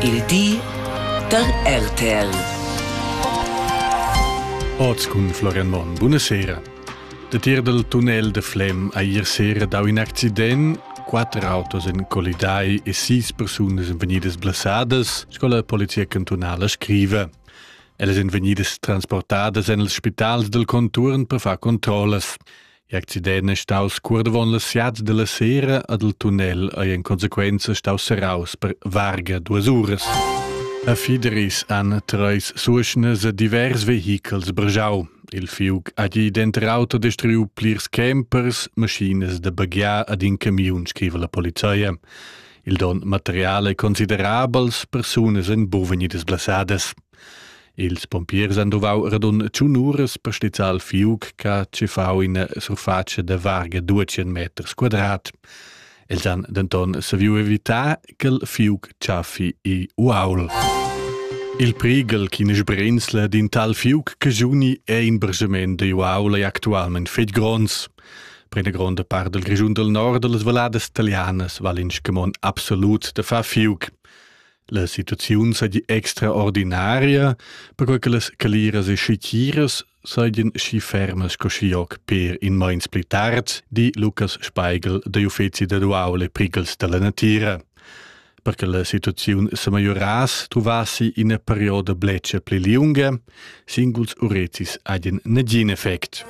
Il di da RTL. Oz cun Florian Monn. Buonasera. Da tier dal tunnel de Flem ha ier sera dau in accident quatter autos en colidai e sis persunas en vegnidas blasadas, sco la polizia cantunala scrive. Ellas en vegnidas transportadas en els spitals del conturn per far controllas. L'accident è staus cuordavon la siat dalla sera ad il tunnel ei en consequenza staus serraus per varga duas uras. A Fideris han treis suschnas divers vehichels brgiau. Il fiug ha gi denter auto destruiu plirs campers, maschinas da baghiar ad in camiun, scriva la polizia. Il don material è considerabels, persunas en buven e disblassadas. Ils pompiers han duvau radun tschun uras per stizzar il fiug che ha tschiffau ina surfatscha da varga duecent meters quadrat. Els han denton saviu evitar ch'il fiug tschaffi i uaul. Il prighel ch'ina sbrinzla d'in tal fiug che giuni è in bragement da uaul è actualment fetg gronds. Per una gronda part del Grischun del Nord, las valladas talianas val in scamon absolut da far fiug. La situaziun seigi extraordinaria, perquei che las caliras e schitiras seigien schi fermas sco schi hoc per in meins pli tard, di Lukas Speigel degl uffeci da duaul e prighels dalla natira. Per che la situaziun semegliorass truvassi ina perioda bletscha pli liunga, singuls urecis hagen negin effect.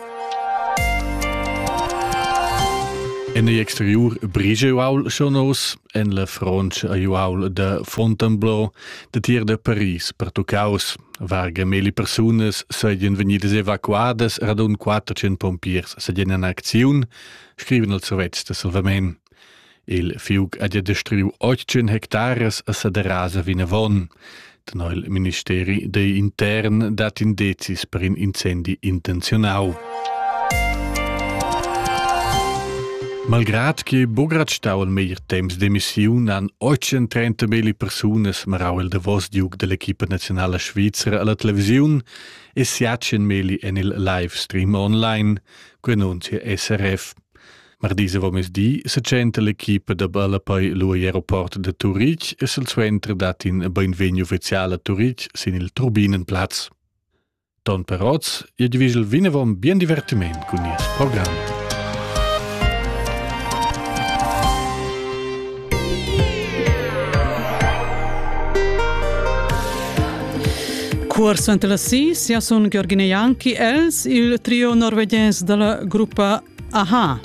En ei exteriur brige uaul schon aus, en la frontscha a Uaul da Fontainebleau datier da Paris pertuccaus. Varga meli persunas seigien vegnidas evacuadas radun 400 pompiers seigien en acziun, scriven els Sovets da Salvamen. Il fiug ha destruiu 800 hectares a Saderasa vinavon. Tenor il ministeri dei intern dat in dezis per in incendi intenziunau. Malgrad che Bograt stau al meglier temps demissiun han 830 meli persunas marau il davos diug dell'equipa nazionala svizera alla televisiun e siacen meli en il live stream online, quei annunzia SRF. Mardi avomesdi setschenta l'equipa da ballapei lu egl aeroport da Turitg e silsuenter dat in beinvegni ufficial a Turitg sin il Turbinenplatz. Ton per oz, e divigel vinavon bien divertiment cun nies program. Cuor suenter la si, sia sun Georgine Janki, els, il trio norvegiens dalla gruppa Aha.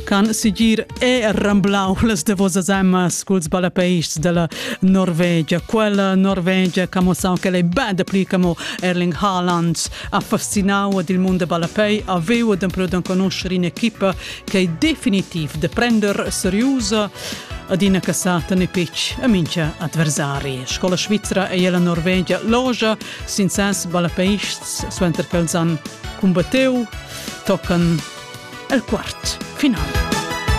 Can sigir è ramblau las davosas amas culs ballapeists della Norvegia. Quella Norvegia camo sao che lei band pli camo Erling Haaland ha fascinau ed il mondo ballapei aveva d'emplu da conoscere in equipa che è definitiv de prender seriosa ad ina cassata ne pitch a mincha adversari. Scola svizra e la Norvegia logia sin ses ballapeists, suenter ch'els han cumbatteu, toccan el quart final.